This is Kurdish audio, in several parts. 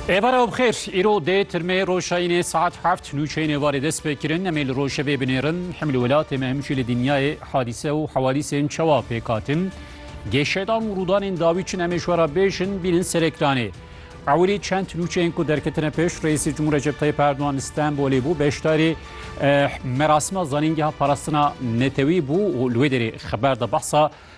Êvara û bixêr, îro dê tirmê roşayînê saet heft nûçeyên êvarê dest pê kirin. Em ê li rojevê binêrin. Him li welatê me him jî li dinyayê hadîse û hewadîsên çawa pêk hatin. Gêşedan û rûdanên dawî çin em ê ji we re bêjin, bînin ser ekranê. Ewilî çend nûçeyên ku derketine pêş Reîsê Cumhur Recep Tayyip Erdogan li Stenbolê bû, beşdarî merasima zanîngeha parastina netewî bû û li wê derê xeber da behsa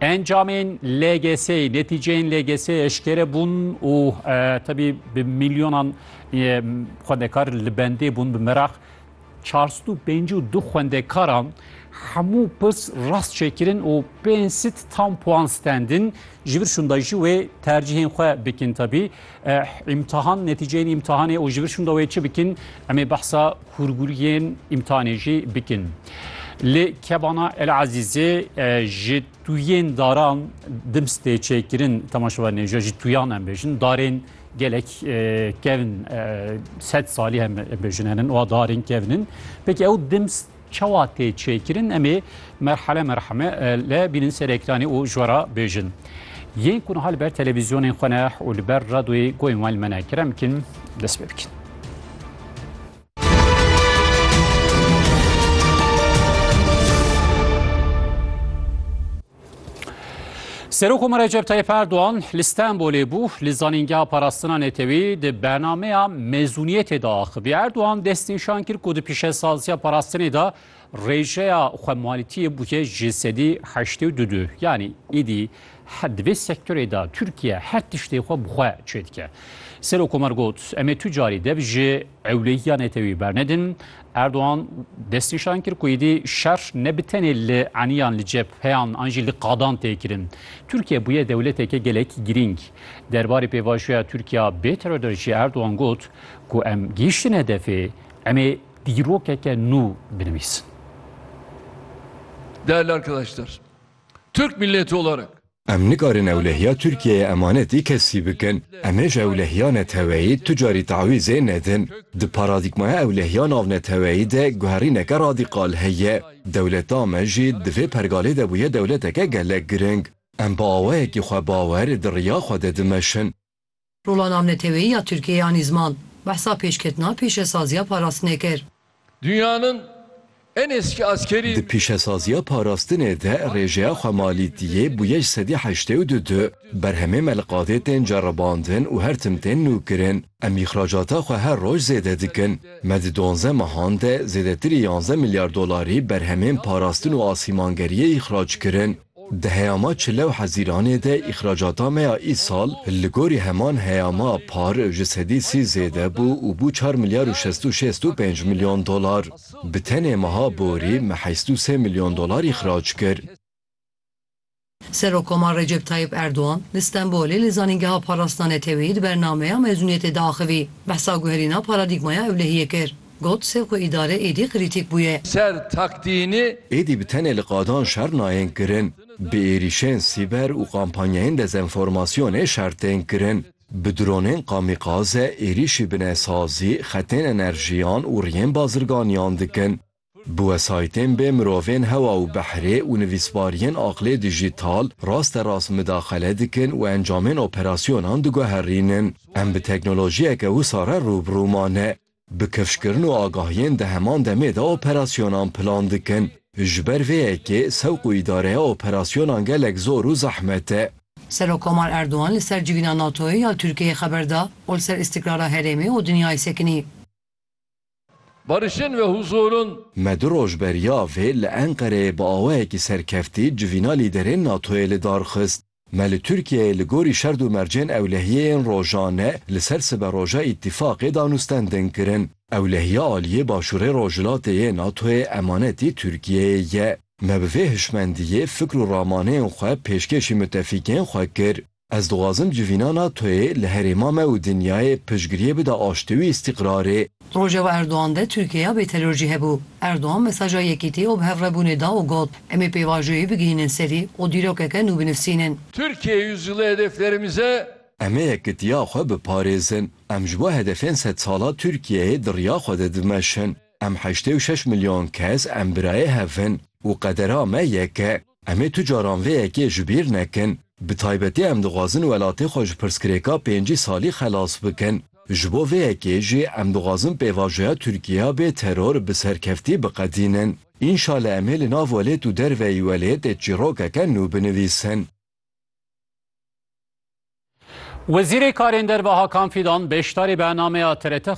Encamên LGS'ê, netîceyên LGS'ê eşkere bûn û tevî bi milyonan xwendekar li bendê bûn bi meraq. Çar sed û pêncî û du xwendekaran hemû pirs rast çêkirin û pênc sed tam puan stendin. Ji vir şûnda jî wê tercîhên xwe bikin tevî. Îmtihan, netîceyên îmtihanê û ji vir şûnda wê çi bikin? Em ê behsa Hûrgûriyên îmtihanê jî bikin. Lê kebana El Ezîzê ji tuyên daran dims tê çêkirin temaşevan nêja ji tuyan em bêjin darên gelek kevin sed salî hem bêjin henin û darên kevinin. Peki ew dims çawa tê çêkirin em ê Merhale merhame le bînin ser ekranê û ji we re bêjin. Yên ku niha li ber televîzyonên xwe ne û li ber radoyê goyên wan li me ne kerem bikin dest pê bikin. Serokoma Recep Tayyip Erdoğan li Stenbolê bû li zanîngeha parastina netewî di bernameya mezûniyetê de axivî. Erdoğan destnîşan kir ku di pîşesaziya parastinê de Rêjeya xwemalîtiyê bûye ji sedî heştê û du. Yanî îdî di vê sektorê de Tirkiye her tiştê xwe bi xwe çêdike. Serokkomarê got, Em ê tu carî dev ji ewlehiya netewî bernedin. Erdogan destnîşan kir ku îdî şer ne bi tenê li eniyan li cepheyan an jî li qadan tê kirin. Tirkiye bûye dewleteke gelek girîng. Derbarê pêvajoya Tirkiya bê terorê jî Erdogan got ku em gihîştine hedefê, em ê Dîrokeke nû binivîs. Değerli arkadaşlar, Türk milleti olarak. Em nikarin ewlehiya Tirkiyeyê emanetî kesî bikin. Em hêj ewlehiya neteweyî tu carî tewîzê nedin. Di paradîgmaya ewlehiya navneteweyî de guherîneke radîkal heye. Dewleta me jî di vê pergalê de bûye dewleteke gelek giring. Em bi awayekî xwebawer di riya xwe de dimeşin. Rola navneteweyî ya Tirkiyeyê anî ziman, behsa pêşketina pîşesaziya parastinê kir. Dünyanın en eski askeri. Di pîşesaziya parastinê de rêjeya xwemalîtiyê bûye ji sedî heştê û du du. Berhemê me li qadê tên ceribandin û her tim tên nûkirin. Em îxracata xwe her roj zêde dikin. Me di duanzdeh mehan de zêdetirî yanzdeh milyar dolarî berhemên parastin û asîmangeriyê îxrac kirin. Di heyama çil û hezîranê de îxracata me ya îsal li gorî heman heyama par ji sedî sî zêde bû û bû çar milyar û şesto şêst û pênc milyon dolar. Bi tenê meha borî me heşt û sê milyon dolar îxrac kir. Serokomar Recep Tayyîp Erdogan li Stenbolê li Zanîngeha Parastina Neteweyî di bernameya mezûniyetê de axivî, behsa guherîna paradîgmaya ewlehiyê kir. Got, Sê xwe îdare êdî krîtîk bûye. Ser taktînî. Êdî bi tenê li qadan şer nayên kirin. Bi êrîşên sîber û kampanyayên dezenformasyonê şer tên kirin. Bi dronên kamîkaze êrîşî binesazî, xetên enerjiyan û riyên bazirganiyan dikin. Bi wesayîtên bê mirovên hewa û behrê û nivîsbariyên aqlê dijîtal raste rast midaxele dikin û encamên operasyonan diguherînin. Em bi teknolojiyeke wisa re rû bi rû mane. Bi kifşkirin û agahiyên di heman demê de operasyonan plan dikin. Ji ber vê yekê sewq û îdareya operasyonan gelek zor û zehmet e. Serokkomar Erdogan li ser civîna NATO'yê ya Tirkiyeyê xeber da û li ser îstikrara herêmê û dinyayê sekinî. Barişên ve huzurun. Me du roj beriya vê li Enqereyê bi awayekî serkeftî civîna lîderên NATO'yê li dar xist. Me li Tirkiyeyê li gorî şerd û mercên ewlehiyeyên rojane li ser siberoja Îtîfaqê danûstendin kirin. Ewlehiya aliyê Başûrê Rojhilatê yê NATO'yê emanetî Tirkiyeyê ye. Me bi vê hişmendiyê fikr û ramaneyên xwe pêşkêşî mitefîkên xwe kir. Ez dixwazim civîna NATO'yê li herêma me û dinyayê piştgiriyê bide aştî û îstîqrarê. Rojeva Erdogan de Tirkiyeya bêteror jî hebû. Erdogan mesaja yekîtî û bihevrebûnê da û got, Em ê pêvajoyê bigihînin serî û dîrokeke nû binivsînin. Türkiye Yüzyılı hedeflerimize. Em ê yekitiya xwe biparêzin. Em ji bo hedefên sedsala Tirkiyeyê di riya xwe de dimeşin. Em heştê û şeş milyon kes em birayê hev in û qedera me yek e. Em ê tu caran vê yekê ji bîr nekin. Bi taybetî em dixwazin welatê xwe ji pirsgirêka pêncî salî xelas bikin. Ji bo vê yekê jî em dixwazin pêvajoya Tirkiyeya bê teror bi serkeftî biqedînin. Înşale em ê li nav welêt û derveyî welêtê çîrokeke nû binivîsin. Wezîrê Karên Derve Hakan Fîdan beşdarî bernameya TRT